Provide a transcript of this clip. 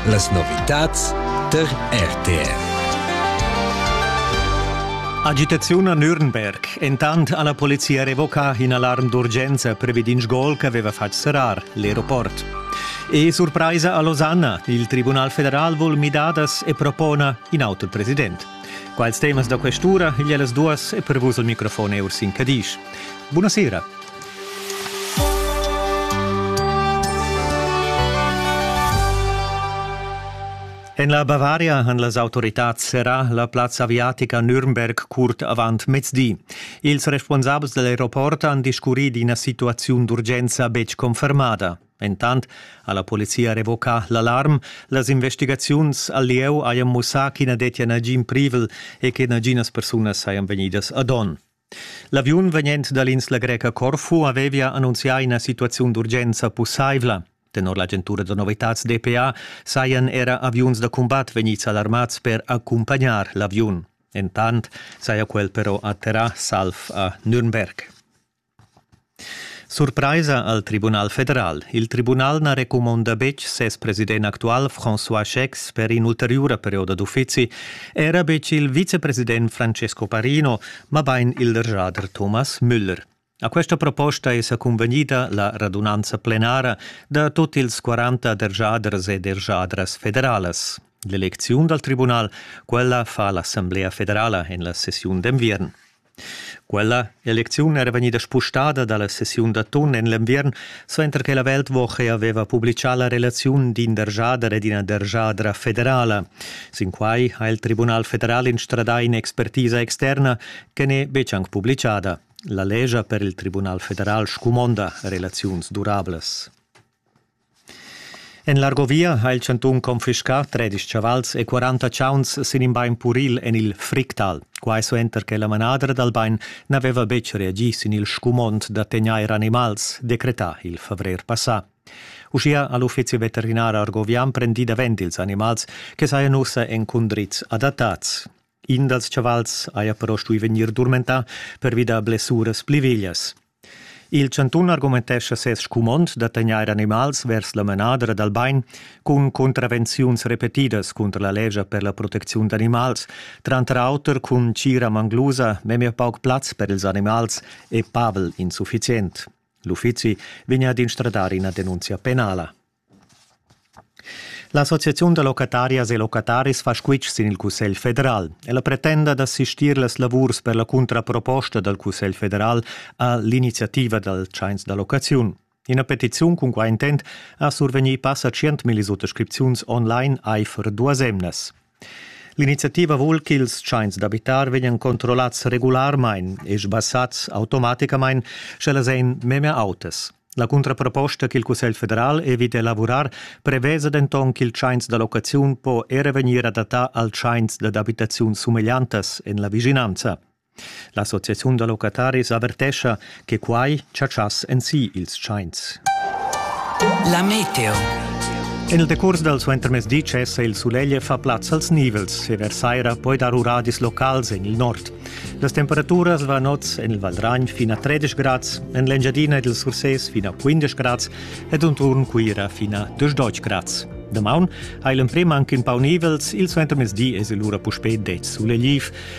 Las novitads tar RTR. Agitaziun a Nürnberg. Entant ha la polizia revoca in alarm d'urgenza previ d'in sgol ch'aveva fatg serrar l'aeroport. E surpraisa a Losanna. Il Tribunal federal vul midadas e propona in auto president. Quals temas da questura igl las duas e per vus il microfon è Ursin Cadisch. Buonasera. En la Bavaria han las autoritads serrà la plazza aviatica Nürnberg curt avant mezdi. Ils responsabels dal aeroport han discurrì d'ina situaziun d'urgenza betg confermada. Entant ha la polizia revocà l'alarm. Las investigaziuns al lieu hajan mussà ch'i na dettia nagin privel e che naginas persunas sajan vegnidas ad onn. L'aviun vegnent dall'insla greca Corfu havevia annunzià ina situaziun d'urgenza pusseivla. Tenor l'agentura da novitads DPA sajan era aviuns da cumbat vegnids alarmads per accumpagnar l'aviun. Entant saja quel però atterrà salv a Nürnberg. Surpraisa al Tribunal federal. Il tribunal na recumonda betg ses president actual François Schecks per in'ulteriura perioda d'uffizi, era betg il vicepresident Francesco Parino, mabain il derschader Thomas Müller. A questa proposta è sa cunvegnida la radunanza plenara da tut ils 40 derschaders e derschadras federalas. L'elecziun dal tribunal, quella fa l'Assamblea federala en la sessiun d'enviern. Quella elecziun era vegnida spustada dalla sessiun d'atun en l'enviern, suenter che la Weltwoche haveva publicà la relaziun d'in dergiader ed ina dergiadra federala. Sin quai ha il Tribunal federal instradà in'expertisa externa che n'è betg anc publicada. La lescha per il Tribunal federal scumonda relaziuns durablas. En l'Argovia ha il chantun confiscà tredisch chavals e quaranta chauns sin in bain puril en il Fricktal. Quai suenter che la manadra dal bain n'aveva betg reagì sin il scumond da tegnair animals, decretà il favrer passà. Uschia ha l'uffizi veterinar argovian prendì davent ils animals che sajan ussa en cundriz adattads. In dals chavals haja però stuì vegnir durmentà pervi da blessuras pli veglias. Il chantun argumentescha ses scumond da tegnair animals vers la manadra dal bain cun contravenziuns repetidas cunter la lescha per la protecziun d'animals, tranter auter cun tgira manglusa memia pauc plaz per ils animals e pavel insuffizient. L'uffizi vegn ad instradar ina denunzia penala. L'associaziun da locatarias e locataris fa squitsch sin il Cussegl federal. Ella pretenda da sistir las lavurs per la cuntraproposta dal Cussegl federal a l'iniziativa dal tschains da locaziun. Ina petiziun cun quai intent ha survegnì passa tschient millisuttascripziuns online aifer duas emnas. L'iniziativa vul ch'ils tschains d'abitar vegnan controllats regularmain e sbassads automaticamain, sch'ellas ein memia autas. La cuntraproposta ch'il Cussegl federal evita elavurar prevesa denton ch'il tschains da locaziun po era vegnir adattà al tschains dad abitaziun sumegliantas en la vischinanza. L'associaziun da locataris avertescha che quai chatschass en si ils tschains. La meteo. En il decurs dal suentermezdi cessa il sulegl e fa plaz als nivels e vers saira poi dar uradis locals en il nord. Las temperaturas van oz en il Valdragn fin a 13 grads, en l'Engiadina ed il Sursés fin a 15 grads ed unturn Cuira fin a 12 grads. Damaun ha il emprim anche in pau nivels, il suentermezdi es lura puspè det sulegliv.